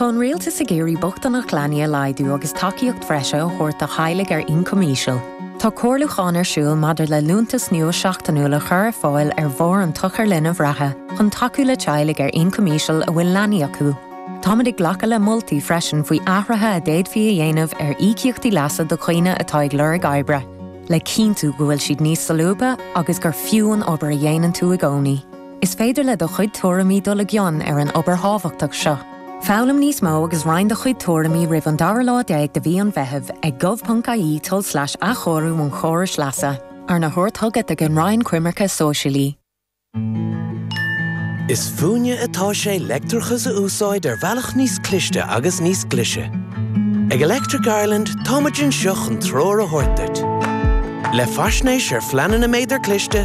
Tá an Rialtas ag iarraidh bochtaineacht leanaí a laghdú agus tacaíocht bhreise a thabhairt do theaghlaigh ar ioncam íseal. Tá comhairliúchán ar siúl maidir le liúntas nua seachtainiúil a chur ar fáil ar bharr an tsochair linbh reatha chun tacú le teaghlaigh ar ioncam íseal a bhfuil leanaí acu. Táimid ag glacadh le moltaí freisin faoi athruithe a d'fhéadfaí a dhéanamh ar íocaíochtaí leasa do dhaoine atá ag lorg oibre, le cinntiú go bhfuil siad níos solúbtha agus gur fiú an obair a dhéanann tú i gcónaí. Is féidir le do chuid tuairimí dul i gcion ar an obair thábhachtach seo. Foghlaim níos mó agus roinn do chuid tuairimí roimh an dara lá déag de mhí an Mheithimh ag gov.ie tulslais athchóiriú an chórais leasa, arna thabhairt chugat ag an Roinn Coimirce Sóisialaí. Is fúinne atá sé leictreachas a úsáid ar bhealach níos cliste agus níos glice. Ag Electric Ireland táimid anseo chun treoir a thabhairt duit. Le faisnéis ar phleananna méadar cliste,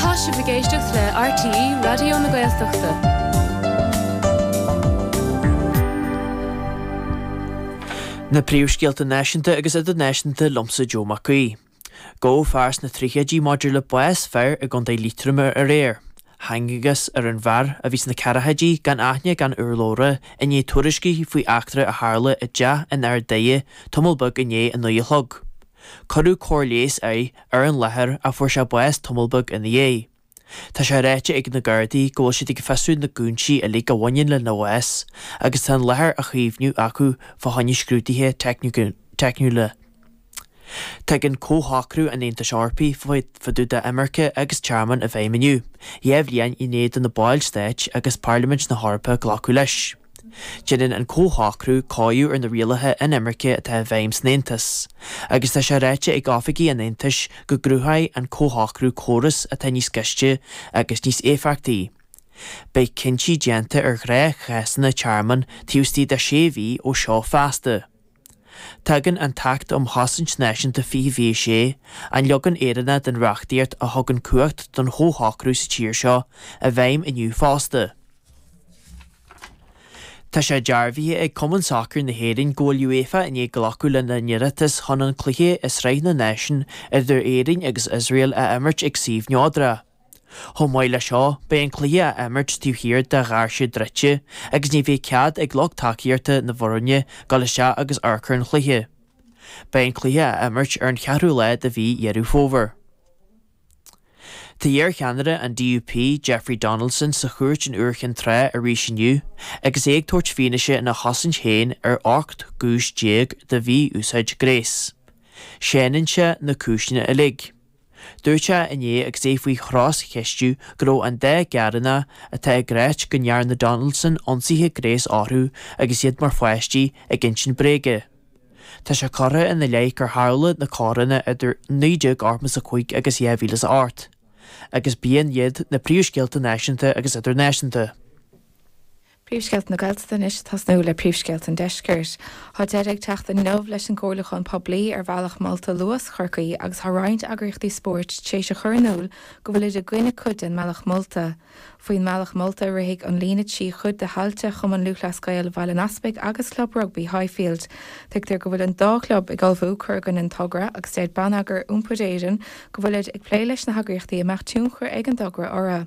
Tá sibh ag éisteacht le RTÉ Raidió na Gaeltachta. Na príomhscéalta náisiúnta agus idirnáisiúnta liomsa Joe Mac Aoidh. Gabhadh fear sna tríochaidí maidir le bás fir i gContae Liatroma aréir. Thángthas ar an bhfear, a bhí sna ceathracháidí, gan aithne gan urlabhra, i ndiaidh tuairiscí faoi eachtra a tharla i dteach in Ard Daighe tamall beag i ndiaidh a naoi a chlog. Cuireadh cóir leighis air ar an láthair ach fuair sé bás tamall beag ina dhiaidh. Tá sé ráite ag na Gardaí go bhfuil siad ag fiosrú na gcúinsí uilig a bhaineann lena bhás agus tá an láthair á chaomhnú acu fá choinne scrúduithe teicniúla. Tagann Comhshocrú an Aontais Eorpaigh fá dtaobh d'imirce agus tearmann i bhfeidhm inniu, dhá bhliain i ndiaidh do na baill stáit agus Pairlimint na hEorpa glacadh leis. Déanann an comhshocrú caighdeánú ar na rialuithe inimirce atá i bhfeidhm san Aontas, agus tá sé ráite ag oifigigh an Aontais go gcruthóidh an comhshocrú córas atá níos gaiste agus níos éifeachtaí. Beidh cinntí déanta ar ghnáthchásanna tearmainn taobh istigh de sé mhí ó seo feasta. Tagann an tAcht um Chosaint Náisiúnta fiche fiche a sé, an leagan Éireannach den reachtaíocht a thugann cumhacht don chomhshocrú sa tír seo, i bhfeidhm inniu fosta. Tá sé dearbhaithe ag Cumann Sacair na hÉireann go bhfuil UEFA i ndiaidh glacadh lena n-iarratas chun an cluiche i Sraith na Náisiún idir Éirinn agus Iosrael a imirt ag suíomh neodra. Chomh maith le seo, beidh an cluiche á imirt taobh thiar de dhoirse druidte agus ní bheidh cead ag lucht tacaíochta na bhfoirne dul isteach agus amharc ar an chluiche. Beidh an cluiche á imirt ar an cheathrú lá de mhí Dheireadh Fómhair. Tá iar-cheannaire an DUP, Jeffrey Donaldson sa chúirt in Iúr Chinn Trá arís inniu agus é ag tabhairt fianaise ina chosaint féin ar 18 gcúis de mhí-úsáid gnéis. Séanann sé na cúiseanna uilig. Dúirt sé inné agus é faoi chros-cheistiú go raibh an dá ghearánach atá ag rá go ndearna Donaldson ionsaithe gnéis orthu agus iad mar pháistí ag insint bréige. Tá sé curtha ina leith gur tharla na coireanna idir 1985 agus 2008, agus b'shin iad na príomhscéalta náisiúnta agus idirnáisiúnta. Príomhscéalta na Gaeltachta anois ag tosnú le príomhscéalta an deiscirt. Tá deireadh ag teacht inniu leis an gcomhairliúchán poiblí ar bhealach molta Luas Chorcaí agus tá roinnt eagraíochtaí spóirt tar éis a chur in iúl go bhfuilid i gcoinne cuid den mbealach molta. Faoin mbealach molta, rithfidh an líne trí chuid de thailte Chumann Lúthchleas Gael Bhaile an Easpaig agus Club Rugbaí Highfield. Tuigtear go bhfuil an dá chlub ag ullmhú cur i gcoinne an togra agus deir Bonneagar Iompair Éireann go bhfuilid ag plé leis na heagraíochtaí a mbeadh tionchar ag an dtogra orthu.